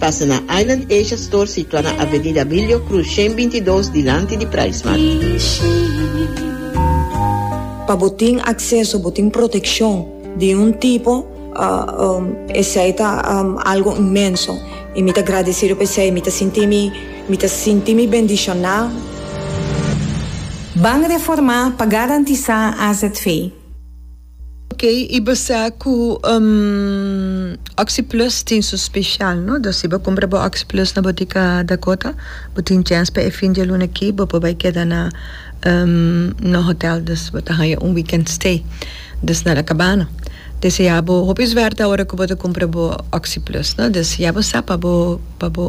Pasa na Island Asia Store situa na Avenida Bilio Cruz shen binti i dos dilanti di Price Mart. Pa bo tin acceso, bo tin proteccion di un tipo esey ta algo inmenso y mi ta gradecido pa esey, mi ta sinti mi, mi ta sinti mi bendiciona. Ban reformá pa garantizá AZV. Ok y bo sa cu oxi plus tin su special no dor si bo cumpra bo oxi plus na botica Dakota bo tin chens pa e fin dia luna aki bo por bay keda na no hotel dus bo ta haya un weekend stay dus na la cabana deci ya bo hopi suerte aora cu bo ta cumpra bo oxi plus no dus ya bo sa pa bo pa bo.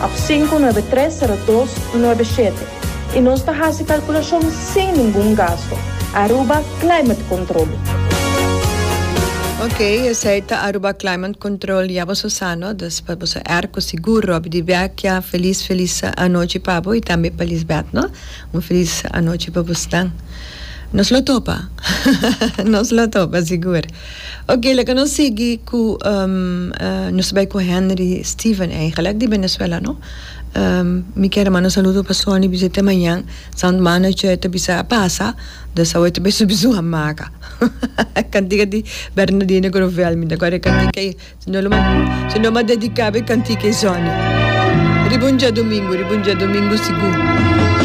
Ap sinku nuebe tres sero dos nuebe shete i nos ta hasi kalkulashon sin ningun gasto. Aruba Climate Control. Ok, esei ta Aruba Climate Control, ya boso sano, dus pa boso air ku sigur Robbie di Vecchia, felis felis anochi pa bo i tambe pa Lisbeth no, un felis anochi pa bosnan. Nos lo topa, nos lo topa sigur. Ok, laga nos sigui cu nos bai cu Henry Steven eigenlijk di Venezuela no. Mi kier a manda saludo pa Sonny bisa te mañan sant manager ta bisa a pasa dus awor e ta bisa su a maga cantica di Bernadino Grovel mi ta gora e cantica ei si no lo ma si no lo ma dedicaba e cantica ei Sonny. Riba un diadomingo riba un diadomingo sigur.